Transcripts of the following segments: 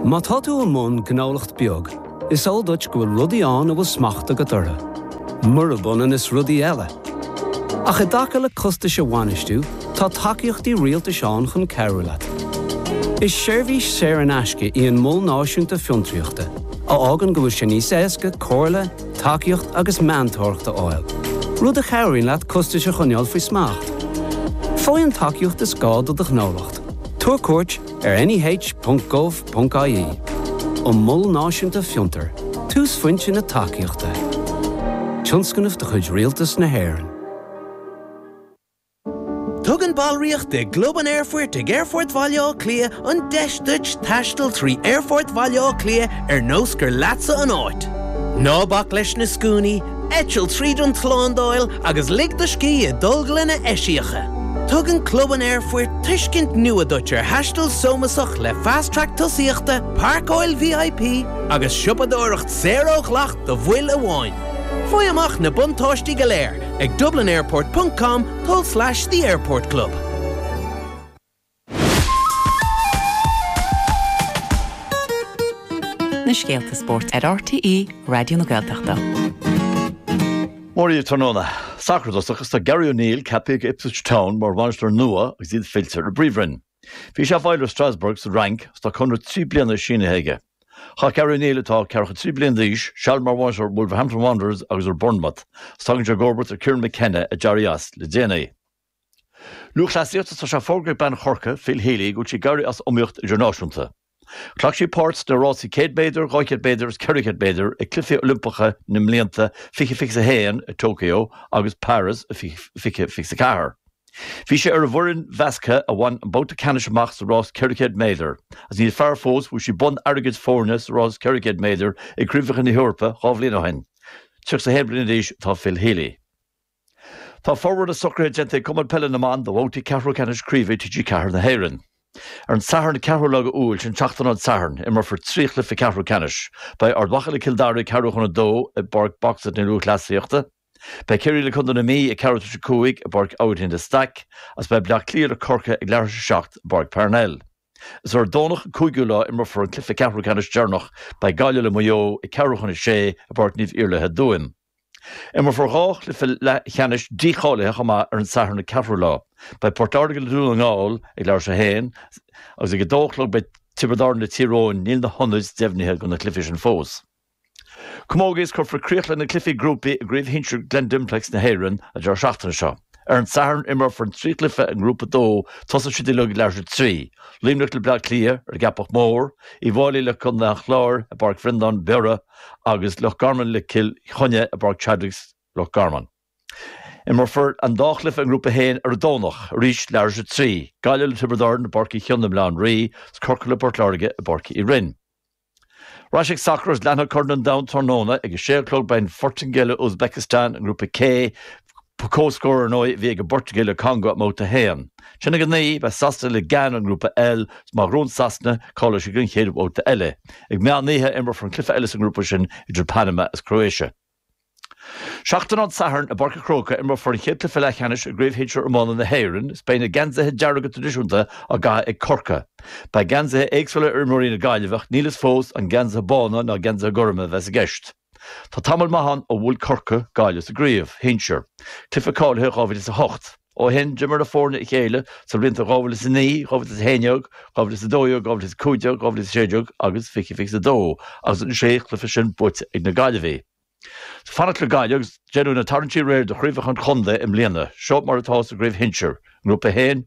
Má tá tú i mbun gnólacht beag, is eol duit go bhfuil rudaí ann a bhfuil smacht agat orthu, murab ionann is rudaí eile. Ach i dtaca le costais a bhainistiú, tá tacaíochtaí rialtais ann chun cabhrú leat. Is seirbhís saor in aisce í an Mol Náisiúnta Fiontraíochta, a fhágann go bhfuil sé níos éasca comhairle, tacaíocht agus meantóireacht a fháil, rud a chabhraíonn leat costais a choinneáil faoi smacht. Faigh an tacaíocht is gá do do ghnólacht. Tabhair cuairt ar neh.gov.ie An Mol Náisiúnta Fiontar, túsphointe na tacaíochta. Tionscnamh de chuid Rialtas na hÉireann. Tugann ballraíocht i gClub an Aerfoirt ag Aerfort Bhaile Átha Cliath an deis duit taisteal trí Aerfort Bhaile Átha Cliath ar nós gur leatsa an áit. Ná bac leis na scuainí, Eitil tríd an tslándáil agus lig do scíth i dtolglanna eisiacha. Tugann Club an Aerfoirt tuiscint nua duit ar thaisteal sómasach le Fast Track Tosaíochta, páirceáil VIP agus siopadóireacht saor ó dhleacht do bhaill amháin. Faigh amach na buntáistí go léir ag dublinairport.com tulslais the airport club. Na scéalta spóirt ar RTÉ Raidió na Gaeltachta. Mora dhaoibh tráthnóna, sacar i dtosach, is tá Gary O'Neill ceaptha ag Ipswich Town mar bhainisteoir nua agus iad fillte ar an bpríomhroinn. Bhí sé i bhfeighil ar Strasbourg sa Fhrainc agus tá conradh trí bliana sínithe aige. Chaith Gary O'Neill, atá 43 bliain d'aois, seal mar bhainisteoir Wolverhampton Wanderers agus ar Bournemouth agus tagann sé i gcomharbacht ar Kieran McKenna a d'éirigh as le déanaí. Lúthchleasaíocht, is tá sé fógartha ag bean Chorcaí, Phil Healy, go bhfuil sí ag éirí as iomaíocht idirnáisiúnta. Ghlac sí páirt sna rásaí 100 méadar, 200 méadar agus 400 méadar ag Cluichí Oilimpeacha na mblianta 2021 i Tokyo agus Páras 2024. Bhí sí ar an bhfoireann mheasctha a bhain an babhta ceannais amach sa rás 400 méadar, agus níos fearr fós, bhuaigh sí bonn airgid foirne sa rás 400 méadar ag Craobhacha na hEorpa dhá bhliain ó shin. 31 bliana d'aois atá Phil Healy. Tá formhór na socruithe déanta ag Cumann Peile na mBan do bhabhtaí ceathrú ceannais craoibhe TG4 na hÉireann. Ar an Satharn 4ú lá de Iúil, sin tseachtain ón Satharn, imreofar trí chluife ceathrú ceannais. Beidh Ard Mhacha le Cill Dara ag ceathrú chun a dó i bPáirc Box-It na Lúthchleasaíochta. Beidh Ciarraí le Contae na Mí ag ceathrú tar éis a cúig i bPáirc Aibhistín de Staic agus beidh Bleá Cliath le Corcaigh ag leathuair tar éis a seacht i bPáirc Parnell. Is ar an Domhnach an 5ú lá a imreofar an cluife ceathrú ceannais deireanach. Beidh Gaillimh le Maigh Eo ag ceathrú chun a sé i bPáirc Naomh Iarlaith i dTuaim. Imreofar dhá chluiche leathcheannais dícháilithe chomh maith ar an Satharn an 4ú lá. Beidh Port Láirge le Dún na nGall ag leathuair tar éis a haon agus ag a dó a chlog beidh Tiobraid Árann le Tír Eoghain. Níl na hionaid deimhnithe do na cluichí sin fós. Camógaíocht is cuirfear críoch le na cluichí grúpaí i gCraobh Shinsir Glen Dimplex na hÉireann an deireadh seachtaine seo. Ar an Satharn imreofar an trí chluiche i nGrúpa 2, tosóidh siad uilig ag leathuair tar éis a trí. Luimneach le Bleá Cliath, ar an gCeapach Mhór, Uíbh Fhailí le Contae an Chláir, i bPáirc Bhreandáin Biorra, agus Loch Garman le Cill Chainnigh i bPáirc Chadwicks, Loch Garman. Imreofar an dá chluiche i nGrúpa 1 ar an Domhnach, arís leathuair tar éis a 3, Gaillimh le Tiobraid Árann i bPáirc Uí Chionnaith i mBleá an Rí, agus Corcaigh le Port Láirge i bPáirc Uí Rinn. Ar ais ag sacar agus leanfaidh Corn an Domhain Tráthnóna ag a sé a chlog beidh an Phortaingéil le Uzbekistan i nGrúpa K, Ba comhscór, ar ndóigh, a bhí ag an bPortaingéil le Congó i mBabhta 1. Ansin ag a 9, beidh Sasana le Gána i nGrúpa L. Is má ghnóthaíonn Sasana, cáileoidh siad don chéad bhabhta eile? Ag meán oíche a imreofar an cluiche eile sa ngrúpa sin idir Panama is Croatia. Seachtain ón Satharn, i bPáirc an Chrócaigh, imreofar an chéad cluiche leathcheannais i gCraobh Shinsir Iomána na hÉireann is beidh na geansaithe dearga traidisiúnta á gcaitheamh ag Corcaigh. Beidh geansaithe éagsúla ar imreoirí na Gaillimhe ach níl fhios fós an geansaithe bána nó geansaithe gorma a bheas i gceist. Tá tamall maith ann ó bhuail Corcaigh Gaillimh sa gcraobh shinsear, cluiche cáilithe 2008. Ó shin, d'imir na foirne a chéile sa bhlianta 2009, 2011, 2012, 2015, 2016 agus 2022 agus an sé chluiche sin buaite ag na Gaillimhigh. Is ag fanacht le Gaillimh agus déanadh na tarraingtí aréir do chraobhacha an chontae i mbliana. Seo mar atá sa gcraobh shinsear, i nGrúpa 1,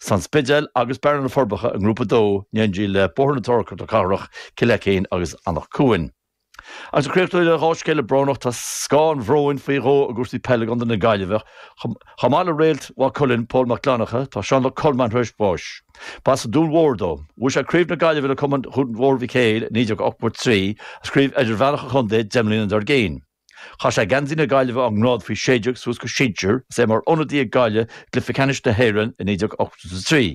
is An Spidéal agus Bearna na Forbacha i nGrúpa 2 in éindí le Bóthar na Trá Cnoc na Cathrach, Cill Fheicéin agus Anach Cuain. Agus ag críochnú le dhá scéala brónach, tá scáth an bhróin faoi dhó i gcúrsaí peile i gContae na Gaillimhe. Chomh maith le réalt Mhaigh Cuilinn, Pól Mac Fhlannchadha, tá Seán Mac Colmáin tar éis bháis. B'as an Dún Mór dó. Bhuaigh sé craobh na Gaillimhe le cumann Dhún Mhór Mhic Héil i 1983 agus craobh idirmheánach an chontae deich mbliana dár gcionn. Chaith sé geansaí na Gaillimhe ón ngrád faoi 16 suas go sinsir is é mar ionadaí ag Gaillimh i gcluiche ceannais na hÉireann i 1983.